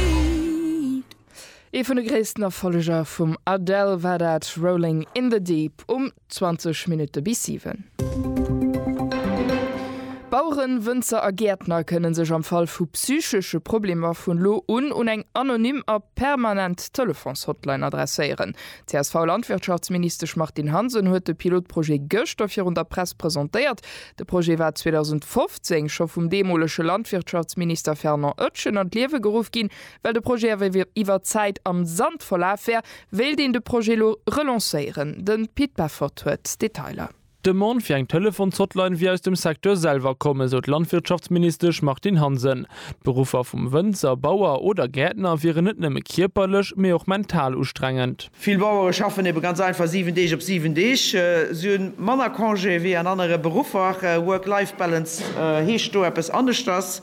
Beat. Ee vun de gréissten Erfolleger vum Adele war dat Rolling in the Deep um 20 Minutte bis 7. Baueren, Wënzer a Gäertner kënne sech am Fall vu psychesche Problemer vun lo un un eng anonym a permanent Telefons-Hotline adresséieren. D'CSV-Landwirtschaftsministesch Martine Hansen huet de Pilotprojet gëschter virun der Press presentéiert. De Projet war 2015 scho vum deemolege Landwirtschaftsminister Fernand Oetschen an d'Liewe geruff ginn, well de Projet awer iwwer d'Zäit am Sand verlaf wär, wéilt een de Projet elo relancéieren. De Pit Peffort huet d'Detailer. D'Demande fir eng Telefons-Hotline wier aus dem Secteur selwer komm, esou d'Landwirtschaftsministesch Martine Hansen. D'Beruffer vum Wënzer, Bauer oder Gäertner wieren net nëmme kierperlech, mee och mental ustrengend. Vill Bauere schaffen ebe ganz einfach 7 Deeg op 7 Deeg. Si hu manner Congé wéi an anere Beruffer. Work-Life-Balance heescht do eppes aneschters.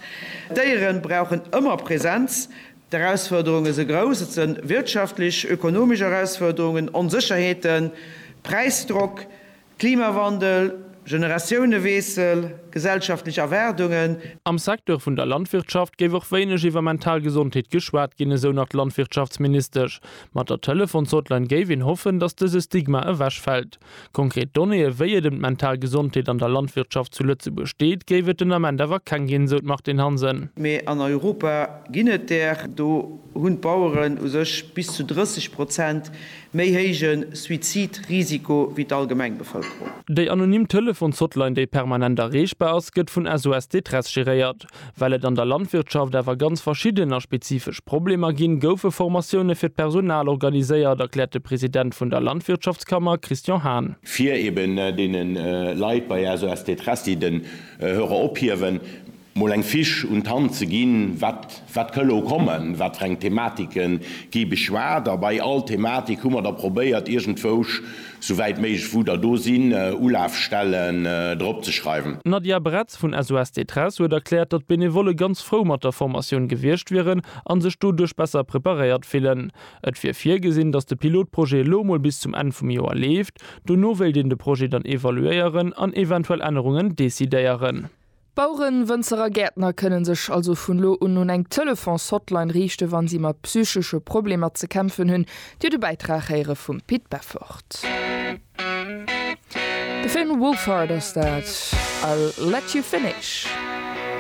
D'Déiere brauchen ëmmer Presenz. D'Erausfuerderunge si grouss. Et si wirtschaftlech, ökonomesch Erausfuerderungen, Onsécherheeten, Präisdrock. Klimawandel, Generatiouneweessel, gesellschaftlech Erwaardungen. Am Secteur vun der Landwirtschaft géif och wéineg iwwer mental Gesondheet geschwat ginn, esou nach d'Landwirtschaftsministesch. Mat der Telefons-Hotline géif een hoffen, datt dëse Stigma ewech fält. Konkret Donnéeë wéi et ëm d'mental Gesondheet an der Landwirtschaft zu Lëtzebuerg steet, géif et den Ament awer keng ginn, esou d'Martine Hansen. Mee an Europa ginn et där. Do hunn d'Baueren u sech bis zu 30 Prozent méi héije Suizidrisiko wéi d'allgemeng Bevëlkerung. Déi anonym Telefons-Hotline, déi permanent erreechbar ass, gëtt vun SOS Détresse geréiert. Well et an der Landwirtschaft awer ganz verschidden a spezifesch Problemer ginn, goufe Formatioune fir d'Personal organiséiert, erkläert de President vun der Landwirtschaftskammer Christian Hahn. fir eben deene Leit bei SOS Détresse, déi den Hörer ophiewen, mol eng Fiche un d'Hand ze ginn, wat wat ka elo kommen, wat fir eng Thematike gi beschwat. A bei all Thematik hu mer da probéiert, iergendwousch, sou wäit méiglech wou der do sinn, Ulafstellen drop ze schreiwen. D'Nadia Bretz vun SOS Détresse huet erkläert, datt d'Benevolle ganz frou mat der Formatioun gewiescht wieren a sech doduerch besser preparéiert fillen. Et wier virgesinn, datt de Pilotprojet elo mol bis zum Enn vum Joer leeft. Dono wéilt een de Projet dann evaluéieren an eventuell Ännerungen decidéieren. Baueren, Wënzer a Gäertner kënnen sech also vun lo un un eng Telefons-Hotline riichte wann si mat psychesche Problemer ze kämpfen hunn. Dir de Bäitrag héiere vum Pit Beffort. De Film Wolfheart ass dat. I'll let you finish.